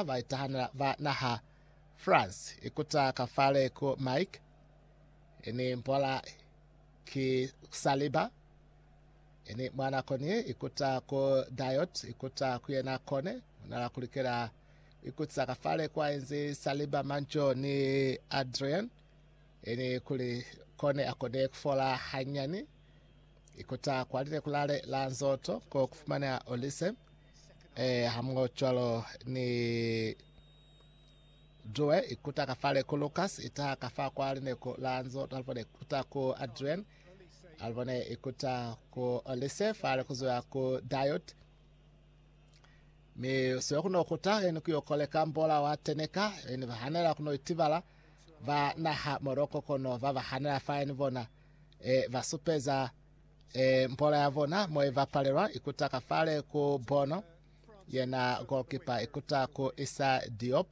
baitahanela ba naha France ikuta ka fale ku Mike ini mpola ki Saliba ini mwa nako ni ikuta ku Diot ikuta ku yena kone unala kulikela ikuta ka fale kwa enzi Saliba Manjo ni Adrian ini kuli kone akone kufola hanyani ikuta kwa lile kulale la nzoto ko kufumanea Olise Eh, hamuocwalo ni Due ikuta ka fale ku Lucas ita ka fa kwa lineku la nzo talvone ikuta ku Adrian alvone ikuta ku Olise fale kuzoya ku Diot mi sio kuno kuta eni kuyo koleka mbola wa teneka eni vahanela kuno itibala va naha Morocco kono va vahanela fa eni bona e vasupeza E, mpola ya bona mo ibapalelwa ikuta ka fale ku bono, yena goalkeeper ikuta ku Issa Diop,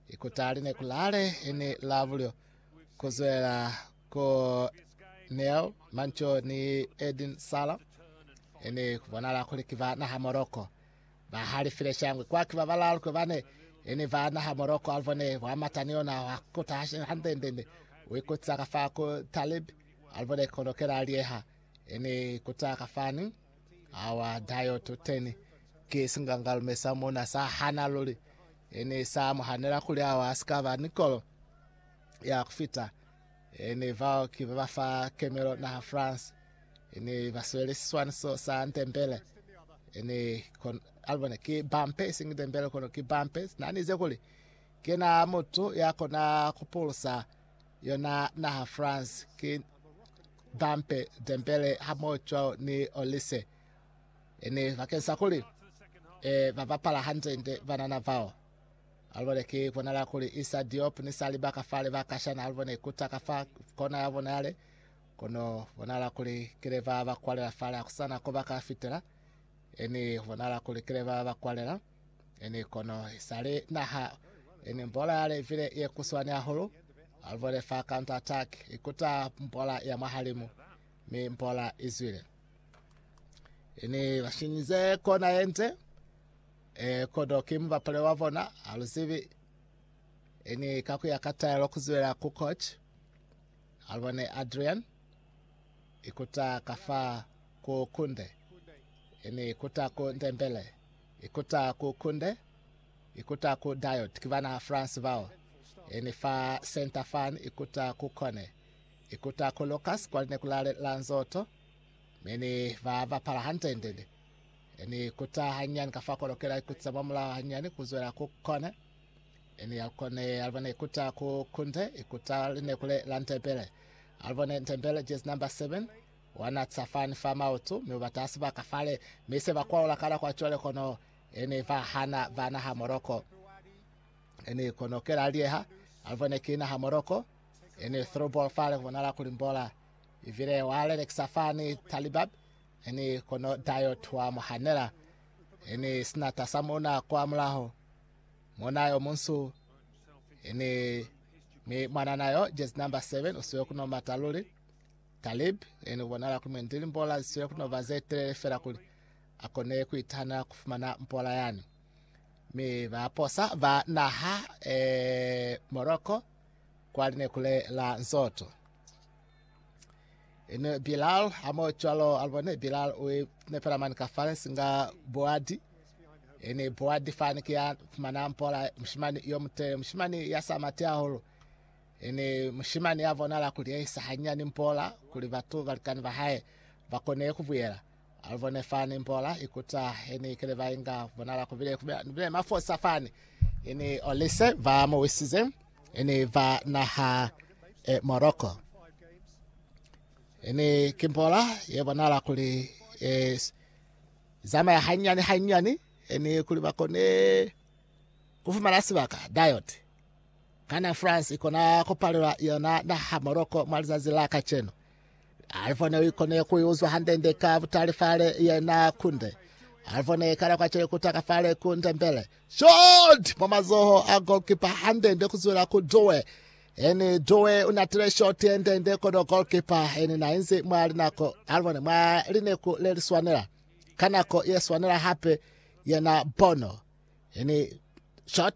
ikuta li ne kulale ini la bulyo kuzwela ku Neil Mancho ni Edin Sala, ini kubonala kuli ki ba naha Morocco. Ba halifile shangwe kwa ki ba balalu kwe bane ini ba naha Morocco alivone bwa mata ni yona wa kuta hande ndende uikutisa ka fa ku Talib Alibone kono kela alieha ene kuta ka fani awa dayo tuteni ki singangalume sa muna sa hana luli ene sa muhanela kuli awa asikaba nikolo ya kufita ene vao ki baba fa kemelo naha France ene baswele siswaniso sa ntembele ene kon alibone ki bampe isingi ntembele kono ki bampe nanize kuli kena mutu ya kona kupulusa Yona naha France ki Dampe, Dembele hamoho cwalo ni Olise. Ene bakeng sa kuli e ba bapala hande-nde banana bao. Alubone ki bonala kuli Issa Diop ni Saliba ka fale ba kashana alubone ikuta ka fa kona ya bona yale. Kono bonala kuli kile ba ba kwalela fale akusana ko ba ka fitela. Ene bonala kuli kile ba ba kwalela. Ini kono isali naha ini mbola ya levile ye kuswani hahulu, aluvole fa counter attack ikuta mbola ya mwahalimu, mi mbola izwile. Ini bashinyize kona yente, e, kodo ki mubapale wa bona, aluzibi. Ini kakuya ka taelo kuzwela ku coach, alubone Adrian, ikuta kafa ku Kunde, ini ikuta ku Ndembele. I kuta ku kunde, i kuta ku diode, ki bana France bao. I ni fa center fan, i kuta ku kone, i kuta ku Lucas kwa lineku la Lanzotto, mi ni ba bapala hantendende. I ni kuta hanyani ka fa kolo kela i kutisa mwa mulao hanyani ku zwela ku kone. I ni alukone, alubone i kuta ku kunde, i kuta lineku le la Ndebele. Alubone Ndebele, jersey number 7. Wa natsa fani fa maoto, mi u bata sibaka fale, mi se ba kwaula ka nako ya cwale, kono e ne ba hana ba naha Moroko. E ne kono kela lieha alivwe ne ki naha Moroko, e ne throughball fale kubonala kuli mbola, ibile wa lelekisa fani Talibab, e ne kono Dayot wa mu hanela, e ne sinata sa muna kwa mulaho, muna yo munsu, e ne mi mwanana yo, jersey number 7, usiwe kuno mata luli. Talib yena u bonala kuli mwendi limbola zi sile ku no ba ze telele fela kuli a kone ku itahanela ku fumana mbola yani. Mi ba posa ba naha e Morocco kwa linekule la Nzoto. Ene Bilal ha mo cwalo a bone Bilal u nepela mani ka fale singa Boadi. Ene Boadi fani ki ya fumana mbola mushimani yo mutele mushimani ya sa mati hahulu. Ene mushimani ya bonala kuli ya isa hanyinyani mpola kuli batu balikani ba hae ba kone ku buyela. A lu bone fani, mpola i kuta ye ne ikile ba inga. Ku bonala ku bile ni mafosa fani. I ni olise ba mu wisize, i ni ba naha e Morocco. I ni ki mpola ye bonala kuli ye zamaya hanyinyani hanyinyani, i ni kuli ba kone ku fumana sibaka, diode. Kana France ikona kupalelwa yona naha Morocco mwa lizazi la kacenu? Alifo ne uikone kuiuzwa hande-nde ka butali fale yena kunde. Alifo ne ikala kwa cele kuta ka fale ku ndembele. Shot! Mwa mazoho a goalkeeper hande-nde kuzwela ku Doe. Eni Doe unatile shot yende-nde kono goalkeeper eni nainzi mwa linako alibone mwa lineku leliswanela. Ka nako yeswanela hape yena Bono eni shot